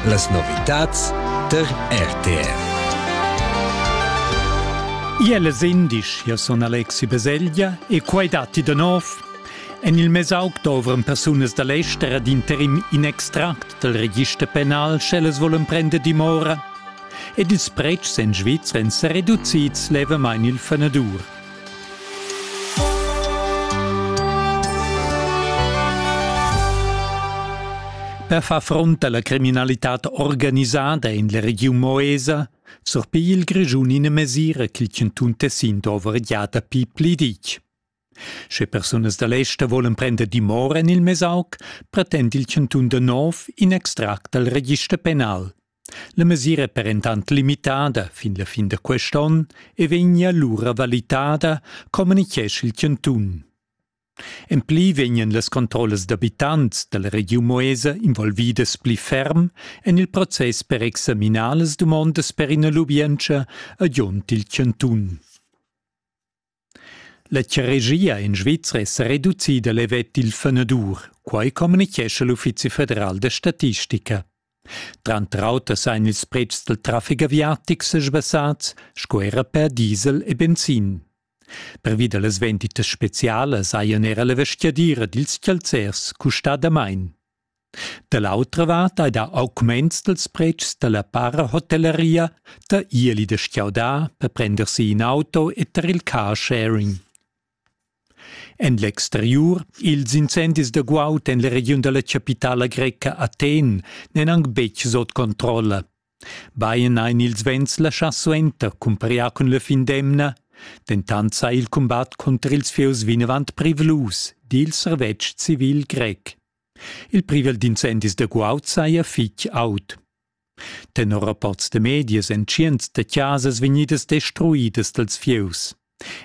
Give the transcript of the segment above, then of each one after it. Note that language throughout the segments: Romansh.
Las novitads tar RTR. Iele sendisch, io son Alexi Beseglia e quai datti da nov. En il mesauc dovran persunas da l'ester ad interim in extract dal register penal, sch'ellas volen prender dimora. Ed ils pretschs en Svizzera èn sa reducids levamain il fenadur. Per far front alla criminalitad organisada in la regiun Moesa surpigli il Grischun ina mesira ch'il chantun Tessin dover gia dapi pli ditg. Sche persunas da l'ester volen prender dimora en il Mesauc, pretend il chantun da nov in extract dal register penal. La mesira è per entant limitada fin la fin da quest'onn e vegnia lura valitada, communitgescha il chantun. En pli vegnan las controllas d'abitants dalla regiun Moesa involvidas pli ferm en il process per examinar las dumondas per ina lubientscha, agiont il chantun. La charegia in Svizra è sa reducida levet il fenedur, quai communitgescha l'Uffizi federal da statistica. Tranter auter sain ils pretschs dal traffic aviatic sesbassats sco era per diesel e benzin. Pervi da las venditas spezialas hajan era la vestgadira dils chalzers custà damain. Da l'autra vart ei dà augments dals pretschs dalla parahotelleria da ieli da stgaudar per prender si in auto e tar il car sharing. En l'exteriur, ils incendis da guaud en la regiun dalla chapitala greca Athen n'èn anc betg sot controlla. Bein ein ils vents laschà suenter cumpariar cun la fin d'emna, dentant sa il cumbat cunter ils fieus vinavant privlus dil servetsch civil grec. Il privel d'incendis da guaud saja fitg aut. Tenor rapports da medias èn tschients da chasas vegnidas destruidas dals fieus.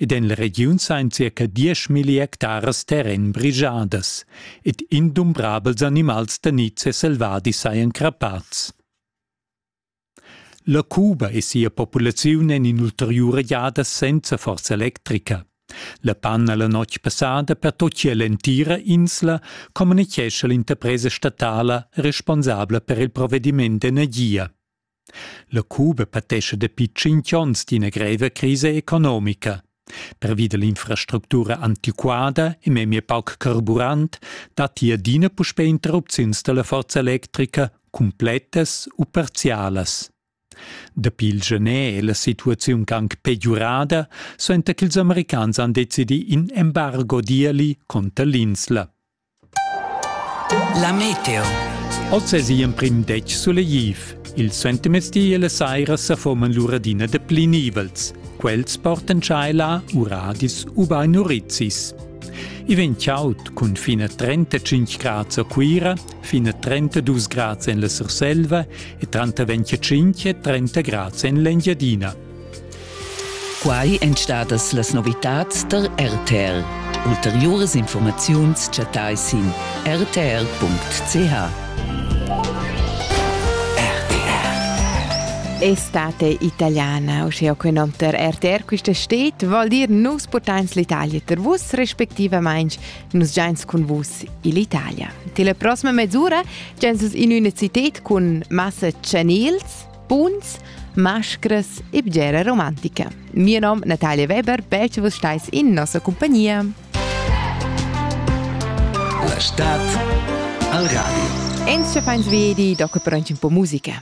Ed en la regiun sain circa dieschmilli hectaras terren brigiadas ed indumbrabels animals da niz e selvadi sajan crappads. La Cuba e sia populaziun en in'ulteriura giada senza forza electrica. La panna la notg passada pertochia l'entira insla, communichescha l'interpresa statala responsabla per il provvediment d'energia. La Cuba patescha dapi tschintg onns d'ina greva crisa economica. Pervi dall'infrastructura antiquada e memia pauc carburant datti adina puspè interrupziuns dalla forza electrica, cumplettas u parzialas. Dapi il gener è la situaziun anc pegiurada, suenter ch'ils americans han decidì in embargo d'ieli conter l'insla. La meteo. Oz es i emprim detg sulegliv. Il suentermezdi e la saira sa foman lur adina da pli nivels. Quels portan tschaila, uradis ubain urizis. I vegn chaud cun fin a 35 grads a Cuira, fin a 32 grads en la Surselva e tranter 25 e 30 grads en l'Engiadina. Quai èn stadas las novitads tar RTR. Ulteriuras informaziuns chattai sin rtr.ch. Estate italiana, uschia che nom per RTR quista steet, vol dir nus portains l'Italia ter vus, respectivamaing nus giains cun vus ill'Italia. Till la prossima mezz'ura giains in üna cited cun massa chanels Buns, mascras e bgera romantica. Mio nom Natalia Weber, perche vus stais in nossa compagnia. La stad al radio. Ins fains vedi doca per un po musica.